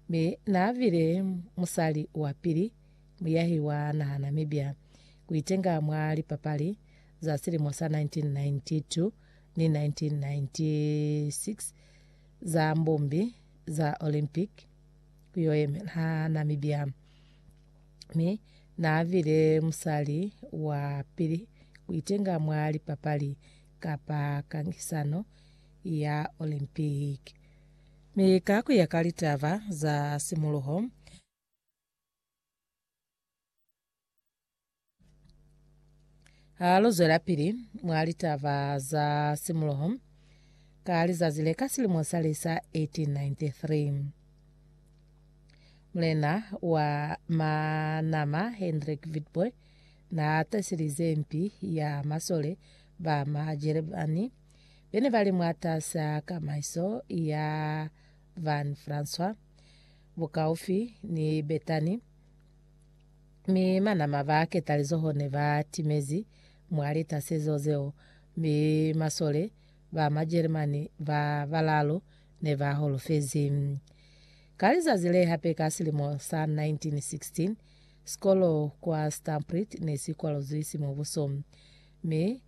Mi naabile musali wapili muyahi wa naha Namibia kuitenga mwa lipapali za silimo sa 1992 ni 1996 za mbumbi za Olympic kuyoyemela Namibia. Mi naabile musali wapili kuitenga mwa lipapali kapa kangisano ya Olympic. Mi ka ku ya ka litaba za simuluho, ha lu zwelapili mwa litaba za simuluho, ka lizazi le ka silimo sa li sa 1893, mulena wa Manama Hendrik Witbooi na taselize mpi ya masole ba Majelemani be ne ba li mwataas'a kamaiso ya Van François bukaufi ni Bethany, mi manama ba ketalizoho ne ba timezi mwa litasezo zeo, mi masole ba Majeremani ba balaalu ne ba holofezi. Ka lizazi le hape ka silimo sa 1916, sikolo kwa Stampreet ne si kwaluzwi simubuso, mi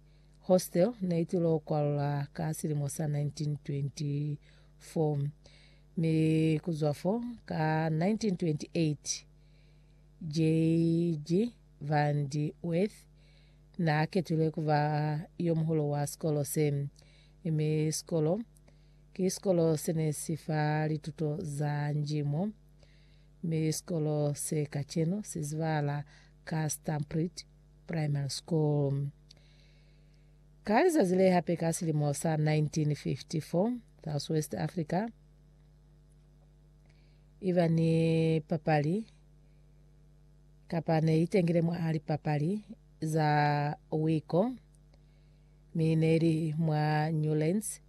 Hostel ne i tilo kwalwa ka silimo sa 1924, mi ku zwa fo, ka 1928, JG. van de Weth n'a ketulwe ku ba yo muhulu wa sikolo se, mi sikolo ki sikolo se ne si fa lituto za njimo, mi sikolo se kacenu si zibahala ka Stampreet, Primary School. Ka lizazi le hape ka silimo sa 1954, South West Africa i ba ni papali kapa ne i tengile mwa lipapali za wiko mi ne li mwa Newlands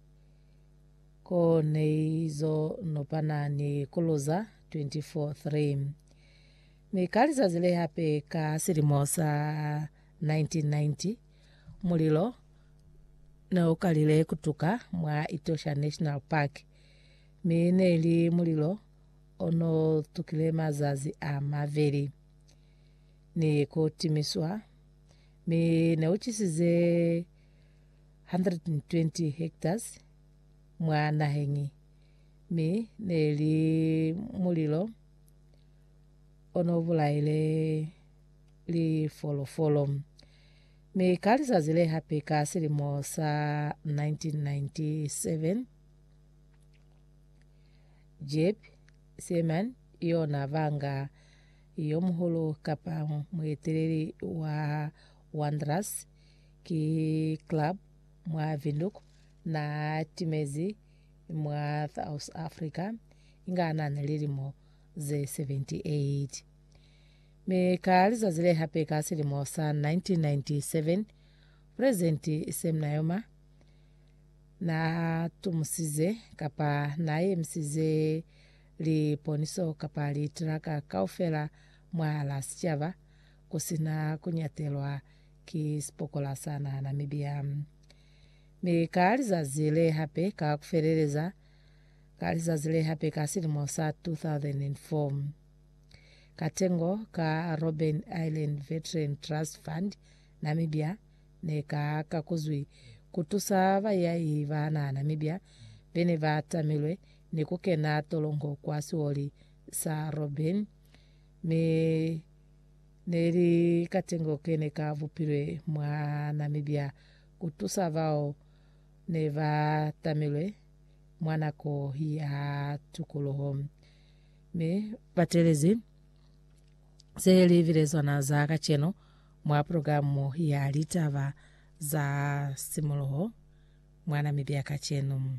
ko ne izo nopana ni Kuluza 24-3. Mi ka lizazi le hape ka silimo sa 1990, mulilo ne u kalile ku tuka mwa Etosha National Park, mi ne li mulilo o n'o tukile mazazi a maveli ni ku timiswa, mi ne u cisize 120 hectares mwa naheñi, mi ne li mulilo ono bulaile lifolofolo. Mi ka lizazi le hape ka silimo sa 1997, Jeb Seaman yona banga yo muhulu kapa mueteleli wa Wanderers ki club mwa Windhoek na timezi mwa South Africa inga na lilimo ze 78. Mi ka lizazi le hape ka silimo sa 1997, Pulezidenti Sam Nujoma na tumusize kapa na yemisize liponiso kapa litraka kaufela mwa la sicaba ku si na ku nyatelwa ki sipokola sa naha Namibia. Mi ka lizazi le hape ka ku feleleza, Ka lizazi le hape ka silimo sa 2004, ka tengo ka Robben Island Veteran Trust Fund, Namibia, ne ka kakuzwi ku tusa bayahi ba naha Namibia be ne ba tamilwe ni ku kena tolongo kwa sioli sa Robben, mi ne li katengo ke ne ka bupilwe mwa Namibia ku tusa bao ne ba tamilwe mwa nako ya tukuluho. Mi batelezi ze li bilezwana za kacenu mwa programu ya litaba za simuluho mwa Namibia kacenu.